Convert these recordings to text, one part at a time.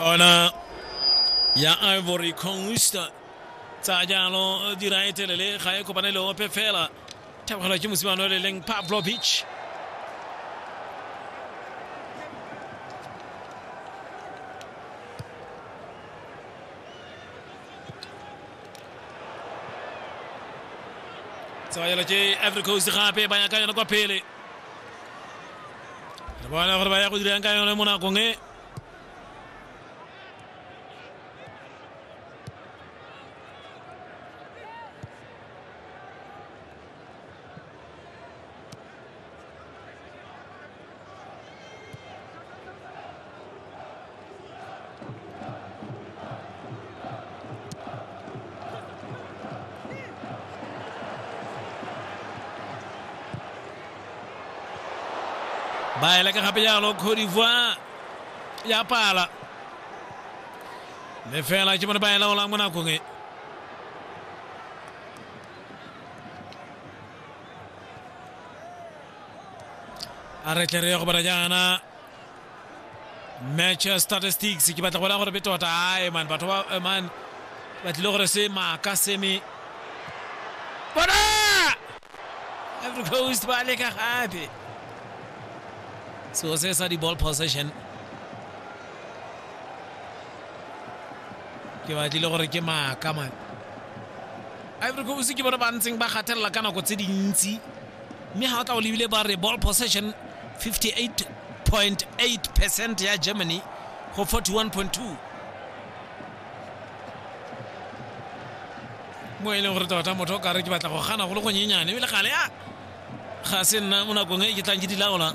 kona ya ivory conquista tsa jaanong dira e telele ga e kopane le ope fela thapegelo ke mosimane o le leng pavlovich tsabayelo ke ivory coast gape ba ya ka yone kwa pele re bona gore ba ya go dirang ka yone mo nakong e ba e leka gape jalo cote d'ivoire ya pala le fela ke bone ba e laolang mo nakong e a re tle re ye go bona jaana match statistics ke batla go bona gore be tota ae man batho ba eh, man ba tlile gore se maaka seme bona every coast ba leka gape seo se sa di-ball possession ke batlile gore ke maaka man ivory coast ke bone ba ntseng ba gatelela ka nako tse dintsi mme ga o tla o lebile ba re ball possession 58.8 percent ya germany go 41.2 mo e leng gore tota motho o kare ke batla go gana go le gonyenyane ebile gale a ga se nna mo nakong e ke tlang ke di laola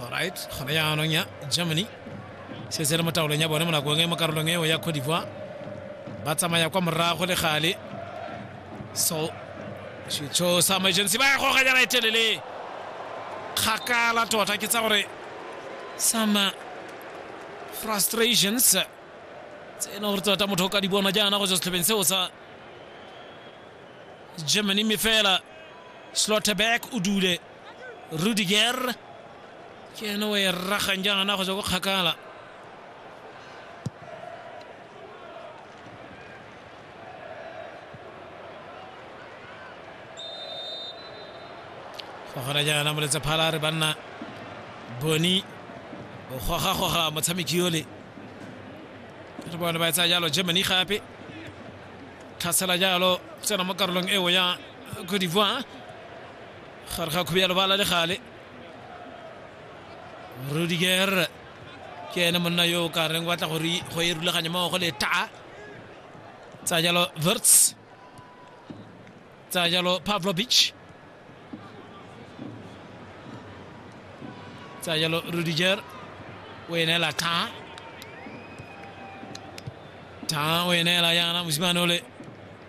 Alright, gone jaanong ya Germany setse le mo taolong ya bone mo nakong e mo karolong eo ya Cote d'Ivoire ba tsamaya kwa morago le gale so setsho sa emergency ba ya goga jana e telele kgakala tota ke tsa gore some frustrations tse e leng gore tota motho o ka di bona jaana go tswa setlhopheng seo sa germany mme fela slotterback o dule rudiger ke ene o e ragang jaana go tswa ko kgakala go gona jaana moletse phala a re banna boni o gogagoga motshameki yole re bone ba e tsaya jalo germany gape tlhasela jalo tsena mo karolong eo ya cote d'ivoire gare ga khubialo bala le gale rudiger ke ene monna yo o ka reng batla gore go e rulaganya maogo le taa tsa jalo verts tsa jalo pavlovich tsa jalo rudiger o enela taa taa o enela yana mosimane ole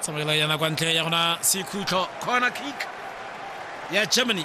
tsamaela yana kwa ntle ya gona sekhutlo corner kick ya germany